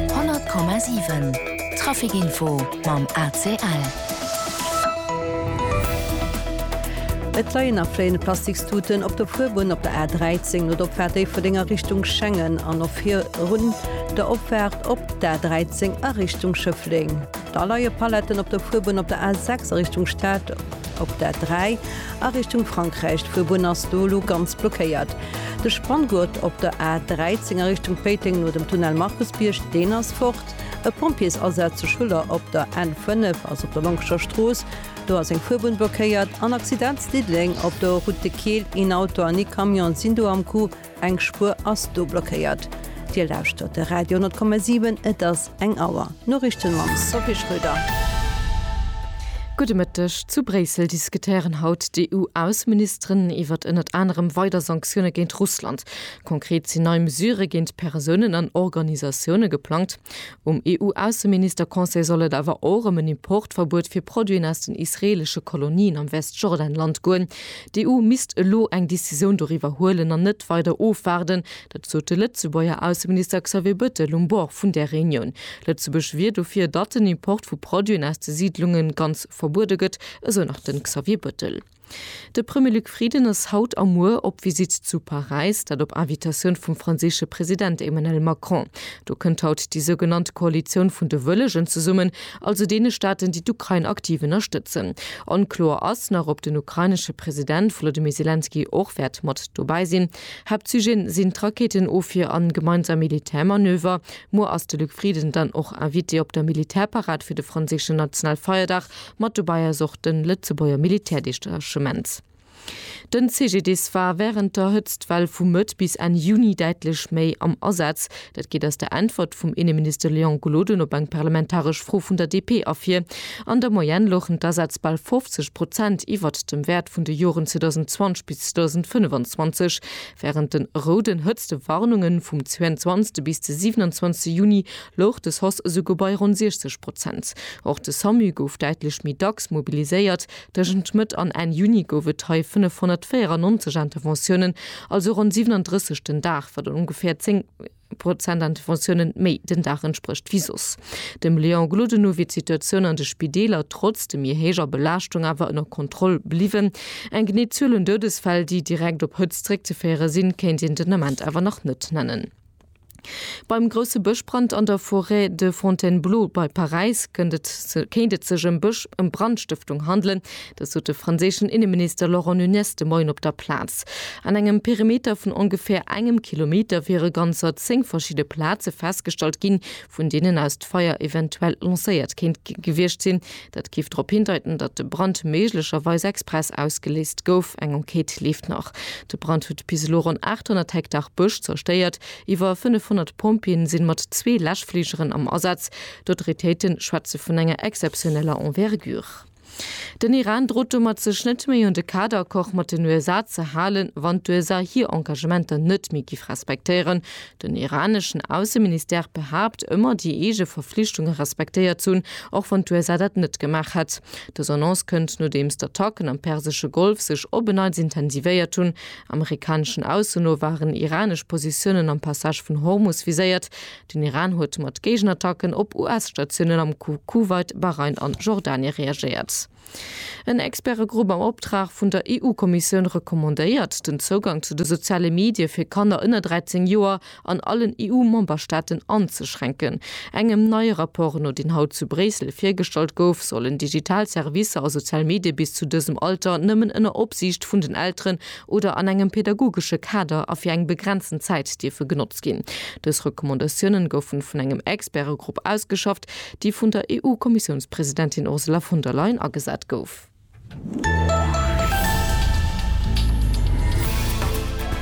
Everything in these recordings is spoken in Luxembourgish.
100,7 Traficinfo mam ACL. Et leien a fléiene Plastikstuten op der Fuerbunn op der A 13 no der Opfaart Déifferdenger a Richtung Schengen an och virun der Opfaart op d'A 13 a Richtung Schëffleng. Da leie Paletten op der Fuerbunn op der A 6 a Richtung Stad. Op der 3, a Richtung Frankräich, d'Fuerbunn ass do elo ganz blockéiert. De Spanngurt op der A 13 a Richtung Péiteng no dem Tunnel Markusbierg, deen ass fort. E Pompjeesasaz zu Schuller op der N 5, also op der Lonkescher Strooss, do ass eng Fuerbunn blockéiert. En Accident zu Diddeleng op der Route de Keel, een Auto an ee Camion sinn do am Coup. Eng Spuer ass do blockéiert. Dir lauschtert de Radio 10,7, et ass eng Auer. D'Noriichten mam Sophie Schröder. Gudde Mëtteg. Zu Bréissel diskutéieren haut d'EU-Ausseministeren iwwert ënnert anerem weider Sanktioune géint Russland. Konkret sinn nei Mesurë géint Persounen an Organisatioune geplangt. Um EU-Ausseminister-Conseil soll et awer och ëm en Importverbuet fir Produiten aus den israeelesche Kolonien am Westjordanland goen. D'EU misst elo eng Decisioun doriwwer huelen an net weider ofwaarden. Dat sot de Lëtzebuerger Ausseminister Xavier Bettel um Bord vun där Reunioun. Lëtzebuerg wier dofir, datt den Import vu Produiten aus de Siidlunge ganz verbuede gëtt, esou nach de Xavier Bettel. De Premier Luc Frieden ass haut a muer op Visitt zu Paräis, dat op Invitatioun vum franséische President Emmanuel Macron. Do kënnt haut déi sougenannt Koalitioun vun de Wëllegen zesummen, also deene Staaten, déi d'Ukrain aktiv ënnerstëtzen. Onkloer ass nach, ob den ukrainesche President Volodymyr Selenskyj och wäert mat dobäi sinn. Haaptsujet sinn d'Rakeetenofwier an gemeinsam Militärmanöver. Muer ass de Luc Frieden dann och Invité op der Militärparad fir de franséischen Nationalfeierdag. Mat dobäi ass och den Lëtzebuerger Militärdechtachement. Den CGDIS war während der Hëtztwell vu Mëtt bis Enn Juni däitlech méi am Asaz. Dat geet aus der Äntwert vum Inneminister Léon Gloden op eng parlamentaresch Fro vun der DP ervir. An der Moyenne louchen d'Asaz bal 50 Prozent iwwert dem Wäert vun de Joren 2020 bis 2025. Während de rouden Hëtztewarnunge vum 22. bis de 27. Juni louch de sos esouguer bei ronn 60 Prozent. Och de Samu gouf däitlech méi dacks mobiliséiert, Tëschent Mëtt an Enn Juni gouf et hei 594 Interventiounen, also ronn 37 den Dag, wat ongeféier 10 Prozent Interventiounen méi den Dag entsprécht wéi soss. Dem Léon Gloden no wier d'Situatioun an de Spideeler trotz de méi héijer Belaaschtung awer ënner Kontroll bliwwen. Eng genee Zuel un Doudesfäll, déi direkt op Hëtzt zeréckzeféiere sinn, kéint een den Ament awer nach net nennen. Beim grousse Bëschbrand an der Forêt de Fontainebleau bei Paräis kënnt et se kéint et sech ëm Bësch ëm Brandstëftung handelen. Dat sot de franséischen Inneminister Laurent Nunez de Moien op der Plaz. An engem Perimeter vun ongeféier engem Kilometer wiere ganzer zéng verschidde Plaze festgestallt ginn, vun deenen aus d'Feier eventuell lancéiert kéint gewiescht sinn. Dat géif drop hindeiten, datt de Brand méiglecherweis express ausgeléist gouf. Eng Enquête leeft nach. De Brand huet bis elo ronn 800 Hektar Bësch zerstéiert. Iwwer 500 Pompjeeën sinn mat zwee Läschfligeren am Asaz. D'Autoritéiten schwätzen vun enger exzeptioneller Envergure. Den Iran drot domat, sech net méi un de Kaderaccord mat den USA ze halen, wann d'USA hir Engagementer net méi giff respektéieren. Den iraneschen Ausseministère behaapt ëmmer, déi eege Verflichtunge respektéiert ze hunn, och wann d'USA dat net gemaach hätt. Dës Annonce kënnt, nodeems d'Attacken am persesche Golf sech op en Neits intensivéiert hunn. Amerikaneschen Ausso no waren iranesch Positiounen am Passage vun Hormus viséiert. Den Iran huet mat Géigenattacken op US-Statiounen am Kuwait, Bahrain an Jordanie reagéiert. En Expertegrupp am Optrag vun der EU-Kommissioun recommandéiert, den Zougang zu de soziale Medie fir Kanner ënner 13 Joer an allen EU-Memberstaaten anzeschränken. Engem neie Rapport no, deen haut zu Bréissel virgestallt gouf, sollen digital Servicer a sozial Medie bis zu dësem Alter nëmmen ënner Opsiicht vun den Elteren oder an engem pädagogesche Kader a fir eng begrenzten Zäit dierfe genotzt ginn. Dës Recommandatiounen goufen vun engem Expertegrupp ausgeschafft, déi vun der EU-Kommissiounspresidentin Ursula von der Leyen agesat gouf.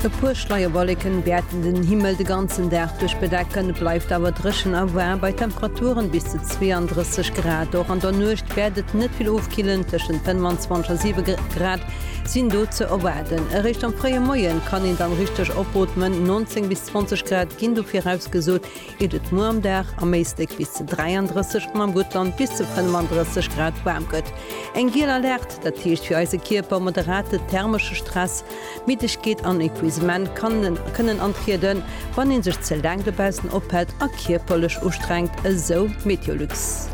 E puer Schleierwolleken wäerten den Himmel de ganzen Dag duerch bedecken, et bleift awer dréchen a waarm bei Temperaturen bis zu 32 Grad. Och an der Nuecht wäert et net vill ofkillen, tëschent 25 a 7 Grad sinn do ze erwaarden. Eréischt am fréie Moien kann een dann richteg opootmen, 19 bis 20 Grad ginn do virausgesot. geet et muer am Dag am Éislek bis zu 33 an am Guttland bis zu 35 Grad waarm gëtt. Eng giel Alerte, dat heescht fir eise Kierper moderate thermesche Stress, Middegkeet an Epuisement kann kënnen antrieden, wann ee sech ze laang dobaussen ophält a kierperlech ustrengt, esou Meteolux.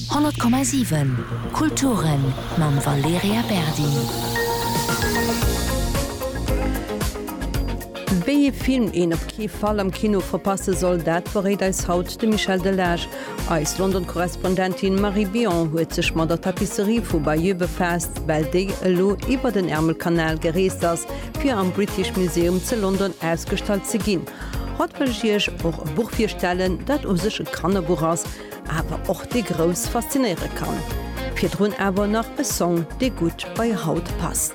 100,7 Kulturen mam Valerija Berdi. Wéi ee Film een op kee Fall am Kino verpasse soll, dat verréit eis haut de Michel Delage. Eis London-Korrespondentin Marie Billon huet sech mat der Tapisserie vu Bayeux befaasst, well déi elo iwwer den Ärmelkanal gereest ass, fir am British Museum ze London ausgestallt ze ginn. Haut wëll ech Iech och e Buch virstellen, dat u sech e Kannerbuch ass, awer och déi Grouss faszinéiere kann. Virdrun awer nach e Song, dee gutt bei haut passt.